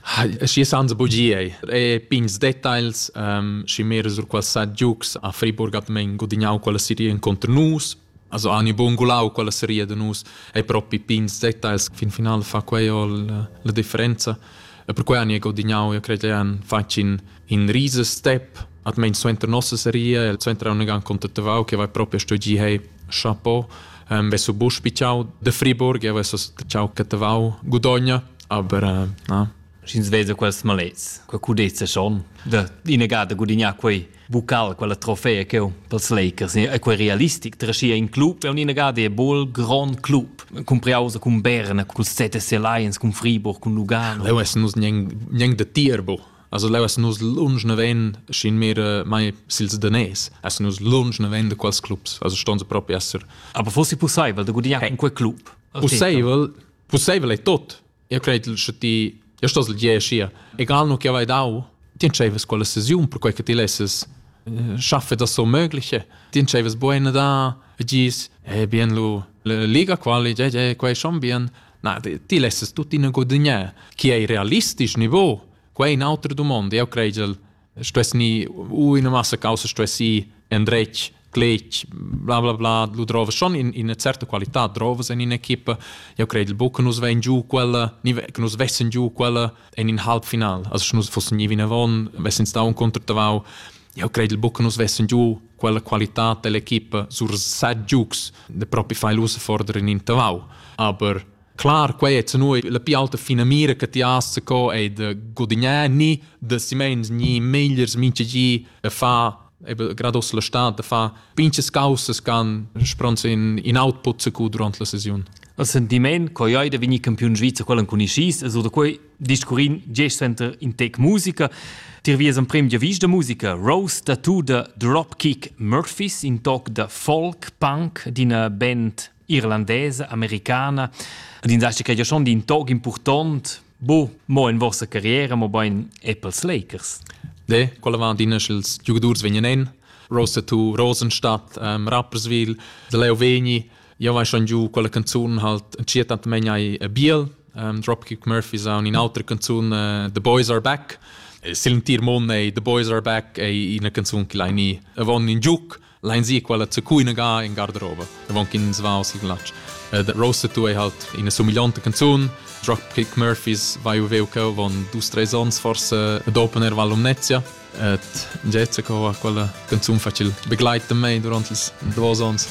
Hei, schi sanza bugie. E pigns details, ehm, schi mir sur qualsà giugs a Friburg hat men gudignau quella seria inconter nus. Also hanno buon gulau quella seria da nus e propi pigns details fin final fa quei ol la differenza. E per quei hanno gudignau, io cred, ein facin in riese step almeno suenter nostra serie suenter un gan contatavau che va proprio sto gi hey chapeau um, vesso bus pichau de Friburg e vesso ciao catavau gudogna aber uh, na Schins veza quels malets, quel cudezza schon, da inegata gudignar quei bucal, quella trofea che pels Lakers, e quei realistic, traschia in club, è un'inegata e bol grand club, compriausa con Berna, col CTC Lions, con Friburg, con Lugano. Leo es nus gneng de Tierbo, Also leu essen nus lunsch naven schin mehr äh, mai sils danès, essen nus lunsch naven da quals clubs, also ston se proprio esser. Aber fossi possibel da gudignare in quel club? Possibel, possibel è tot. Io credo che ti io sto sel je scia. Egal no che vai dau, ti entscheives quella sesiun per quei che ti lesses äh, schaffe das so mögliche. Ti entscheives buena da e gis eh bien lu la liga quali je je quei schon bien Na, ti lessas tuttina guadagnar. Chi ei realistisch niveau? Quei è un'altra domanda. Io credo stess ni u in massa causa stessi endretg, cletg, bla bla bla, lu drova schon in, in certa qualità drovas in un'equipa. Io credo buca che nus vein giù quella, ni che nus vessen giù quella in in halbfinal. Also, se nus fossen in vinavon, vessen stau un contratavau. Io credo buca che nus vessen giù quella qualitad dell'equipa sur set giugs de propi fai l'usa forder in intervau. Aber Klar, quei è noi la più alta finamira che ti hast co è de gudignare ni de si mens ni megliers minche gi e fa eben grados la stad de fa pinches causas can spronz in in output se cu durant la sesiun. A sentimen, coi ai de vini campiun Sviza quellen con ischis e so da quei discurrin gest center in tec musica Tir vies emprem giavisch da musica Rose da tu da Dropkick Murphys, in toc da folk punk d'ina band irlandesa, americana, ed in daschi che schon d'in toc important, bo mo in vostra carriera, mo bein Apples Lakers. De, quella va d'ina sch'ils giugadurs vegnan en, Rose da tu, Rosenstadt, um, Rapperswil, de Leo Vegni, Jau hai schon giu quella canzun halt cia tant mein ai biel um, Dropkick Murphys on in altra canzun uh, The Boys Are Back Silentir Mon ei The Boys Are Back ei ina canzun che lai ni avon in giuc lein si quella zu cuina ga in garderobe avon kin svau si glatsch uh, The Roasted Tu ei halt ina somigliante canzun Dropkick Murphys vai u veu che avon dus tre ons forse ad opener Vallumnezia et Jessica ha quella canzun facil begleiten mei durant ils duos ons